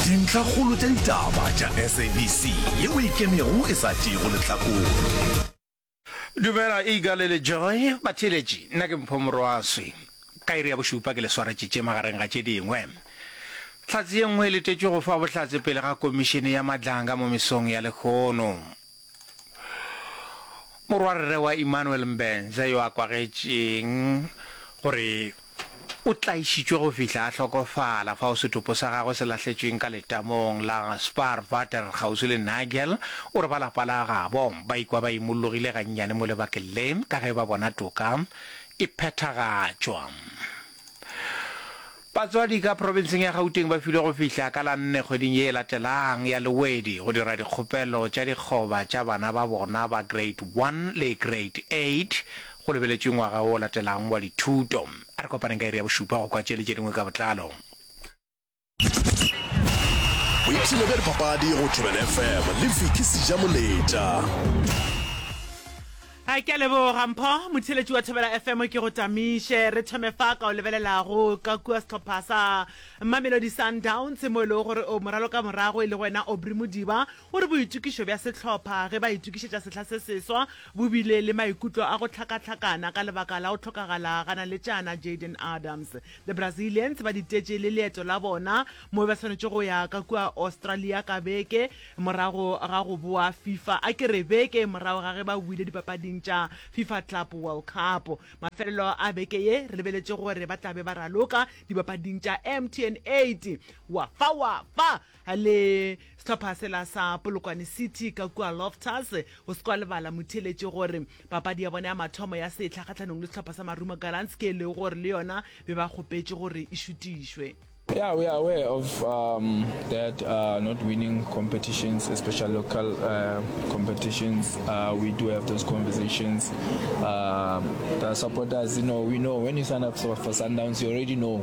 Dintlhakgolo tša ditaba tša SABC ye o ikemego e sa tšeego lehlakore. Dumela Eagle le Joy batheeletši, nna ke Mpho Morwaswi. Ka iri ya bošupa ke le swaretše tše magareng ga tše dingwe. Hlatse ye nngwe e letetšwe go fa bohlatse pele ga Komišene ya Madlanga mo mesong ya lehono. Morwarre wa Emmanuel Mbenze yo a kwagetšeng gore o tlaišitšwe go fihla a hlokofala fao setopo sa gagwe se lahletšweng ka letamong la Spaarwater kgauswi le Nigel o re ba lapa la gabo ba ikwa ba imollogile gannyane mo lebakeng le ka ge ba bona toka e phethagatšwa. Batswadi ka profenseng ya Gauteng ba filwe go fihla ka la nne kgweding ye e latelang ya Lewedi go dira dikgopelo tša dikgoba tša bana ba bona ba Grade One le Grade Eight go lebeletšwe ngwaga wo o latelang wa dithuto. A re kopaneng ka iri ya bošupa go kwa tše le tše dingwe ka botlalo. boipshino bja dipapadi go tšobel fm le fiki seja moletša a ke a leboga mpho motheletši wa thobela fm ke go tamiše re thome fa ka o lebelelago ka kua setlhopha sa mamelodi sundowns mo e lego gore o moralo ka morago e le wena obry modiba o re boitokišo bja setlhopha ge ba itokišetša sehla se seswa bo bile le maikutlo a go tlhakatlhakana ka lebaka la go tlhokagala ga naletšana jaden adams Le Brazilians ba ditetše le leeto la bona mo ba swanetše go ya ka kua Australia ka beke morago ga go boa Fifa a ke re beke morago ga ge ba wile dipapading tša Fifa Club World Cup. Mafelelo a beke ye re lebeletše gore ba tla be ba raloka dipapading tša MTN 8. Wa fa wa fa! le sehlopha sela sa polokwane city ka kua loftus o se kwa lebala motheletše gore papadi ya bona ya mathomo ya setlha kgatlhanong le sehlopha sa marumo gallants ke e lego gore le yona be ba kgopetše gore e šutišwe Yeah, we are aware of um, that uh, not winning competitions, especially local uh, competitions. Uh, we do have those conversations. Um, the supporters, you know, we know when you sign up for, for Sundowns, you already know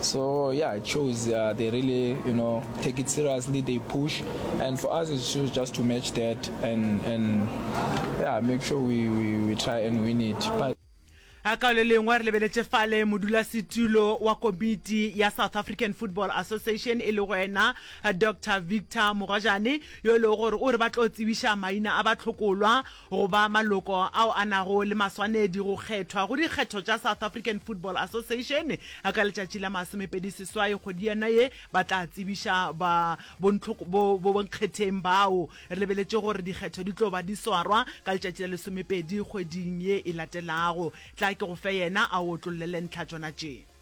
So yeah, it shows uh, they really, you know, take it seriously. They push, and for us, it shows just to match that and and yeah, make sure we we, we try and win it. But a ka le lengwe re lebeletse fale modulasetulo wa komiti ya south african football association e le go ena dr victor mogwajane yo e lego gore o re ba tlo tsebiša maina a batlhokolwa Go ba maloko ao a nago le maswanedi go kgethwa go dikgetho tša South African Football Association ka letšatši la masomepedi seswai kgwedi yona ye ba tla tsebiša ba bonkgetheng bao. Re lebeletše gore dikgetho di tlo ba di swarwa ka letšatši la lesomepedi kgweding ye e latelago. Tla ke go fe yena a o otlollele ntlha tšona tše.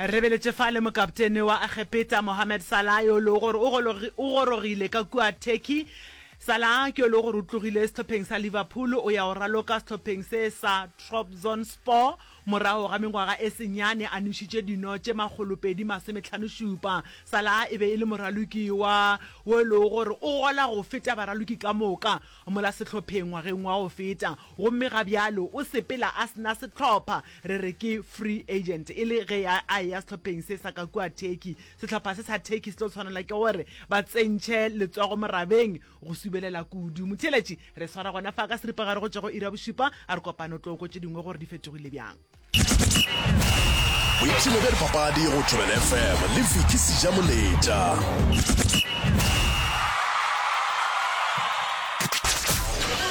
Re beletše fa le mokaptene wa Egepeta Mohamed Salah yo e lego gore o o gorogile ka kua Turkey. Salah ke yo e lego gore o tlogile sehlopheng sa Liverpool o ya go raloka sehlopheng se sa Trabzonspor morago ga mengwaga e senyane a nwešitše dino tše makgolopedi masometlhanošupa. Salah e be e le moraloki wa wo e lego gore o gola go feta baraloki ka moka. Mola sehlopheng ngwageng wa go feta, gomme ga bjalo o sepela a se na sehlopha. Re re ke free agent, e le ge a a eya sehlopheng se sa ka kua Turkey. Sehlopha se sa Turkey se tlo tshwanela ke gore ba tsentšhe letsogo morabeng go subelela kudu. Motheeletši, re swara gona fa ka seripagare go tšwa go iri ya bošupa, a re kopane o tlo go kwa tše dingwe gore di fetogile bjang. boipshino bja dipapadi go thobela fm le viki seja moletša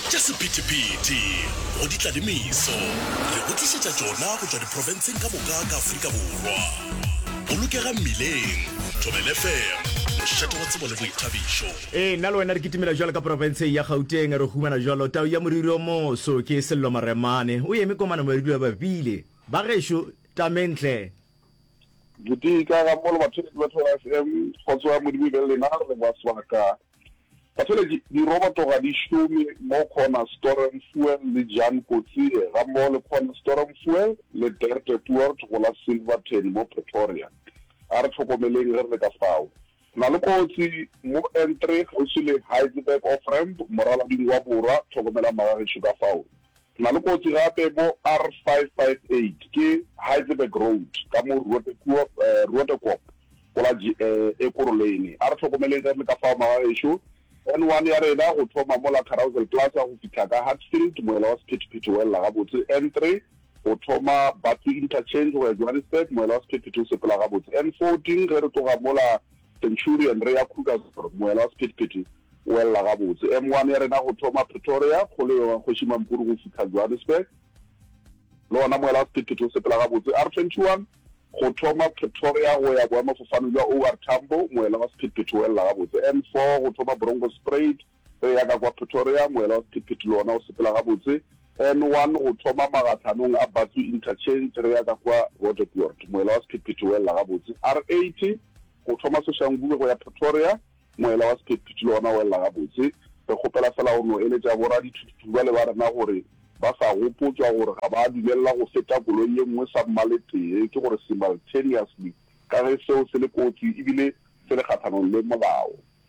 tša sephethephethe go di tlalemiso re go tlišetša tšona go tšwa diprofenseng ka moka ka afrika borwa bolokega mmileng thobela fm mošate wa tsebo le boithabišo Ee, nna le wena re kitimela jwalo ka porofenseng ya Gauteng, re humana jwalo tau ya moriri o moso. Ke Sello Maremane, o eme kwa Manamoriri wa Bapile. Bagešo, Tamentle! Ditika ga mmogo le batholetši ba Thoro FM, kgotso ya Modimo e be le lena, re leboga sebaka. Batholetši, diroboto ga di šome mo Corner Storm Fuel le Jan Kotsie ga mmogo le Corner Storm Fuel le Dirk de Poort go la Silverton mo Pretoria. A re hlokomeleng ge re le ka fao. Na le kotsi mo N three kgauswi le Heidelberg Off Ramp, moralading wa borwa, tlhokomelang magagešo ka fao. Na le kotsi gape mo R five five eight, ke Heidelberg Road ka mo Roodekop, Roodekop go la G Ekurhuleni. A re hlokomeleng ge re le ka fao magagešo. N one ya rena go thoma mo la Carousel Plaza go fihla ka Hatfield, moela wa sephethephethe o elela gabotse N three. go thoma Batsi Interchange go ya Johannesburg, moela wa sephethephethe o sepela gabotse. N14 ge re tloga mola Centurion re ya Krugersdorp, moela wa sephethephethe o welela gabotse. M1 ya rena go thoma Pretoria, kgolo ya Kgoši Mampuru go fihla Johannesburg, le ona moela wa sephethephethe o sepela gabotse. R21 go thoma Pretoria go ya boemafofane bja OR Tambo, moela wa sephethephethe o welela gabotse. N4 go thoma Bronkhorstspruit, Re ya ka kwa Pretoria, moela wa sephethephethe le ona o sepela gabotse N1 go thoma magatlhanong a Batsu Interchange, re ya ka kwa Roodepoort, moela wa sephethephethe o elela gabotse R80 go thoma Soshanguve go ya Pretoria, moela wa sephethephethe le ona o elela gabotse. Re kgopela fela go no eletša boradithuthutu bale ba rena gore ba sa gopotswa gore ga ba dumelela go feta koloi ye nngwe sa mmaletee, ke gore simultaneously, ka ge seo se le kotsi ebile se le kgathanong le molao.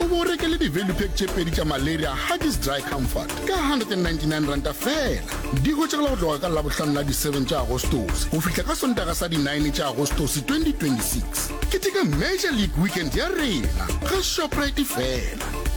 o bo o rekele di-value pack tše pedi tša malaria huggies dry comfort ka 199 ranta fela di hwetšagala go tloga ka labohlano la di-7 tša agostose go fihla ka sontaga sa di-9 tša agostose 2026 keteka major league weekend ya rena ga shoprite fela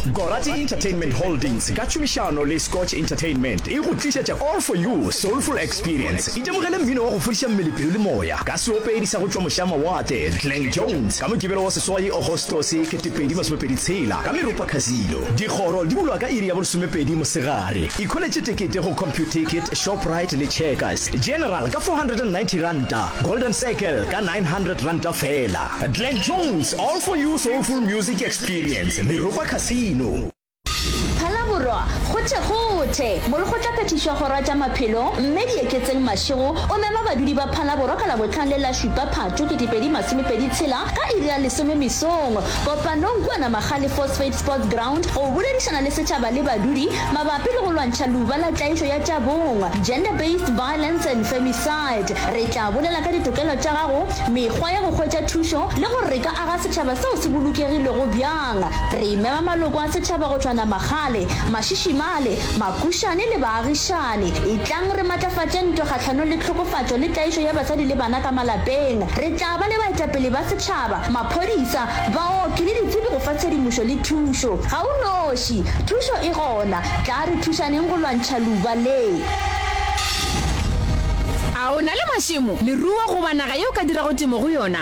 Gorati Entertainment Holdings ka tšhomišano le Scotch Entertainment e go tlišetša All For You Soulful Experience. Itemogele mmino wa go fodiša mmele, pelo le moya ka seopedi sa go tšwa mošamawatle Glenn Jones ka Mokibelo wa seswai Agostose 2026 ka Meropa Casino. Dikgoro di bulwa ka iri ya bolesomepedi mosegare. Ikholetše tekete go Computicket, Shoprite le Checkers. General ka R490, Golden Circle ka R900 feela. Glenn Jones All For You Soulful Music Experience Meropa Casino. Phalaborwa, Gothegothe, mo re go tla phethišwa Gora tša Maphelo, Mme Dieketseng Mashego o mema badudi ba Phalaborwa ka Labohlano le la Šupa Phatho 2020 tshela ka iri ya lesome mesong kopanong kua Namagale Phosphate Sports Ground go boledišana le setšhaba le badudi mabapi le go lwantšha luba la tlaišo ya tša bong, gender-based violence and femicide. Re tla bolela ka ditokelo tša gago, mekgwa ya go hwetša thušo le gore re ka aga Tšhaba seo se bolokegilego bjang? Re imema maloko a setšhaba go tšwa Namagale, Mašishimale, Makušane le baagišane. Etlang re matlafatše ntwa kgahlanong le tlhokofatšo le tlaišo ya basadi le bana ka malapeng. Re tla ba le baetapele ba setšhaba, maphodisa, baoki le ditsebi go fa tshedimošo le thušo. Ga o noši, thušo e gona. Tla re thušaneng go lwantšha luba le. A o na le mašemo, leruo goba naga yeo o ka dirago temo go yona?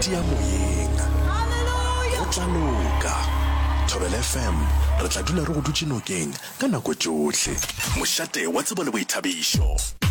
tia moyeng go tla loka thobela fm re tla dula re go dutše nokeng ka nako tšohle mošate wa tsebo le boithabišo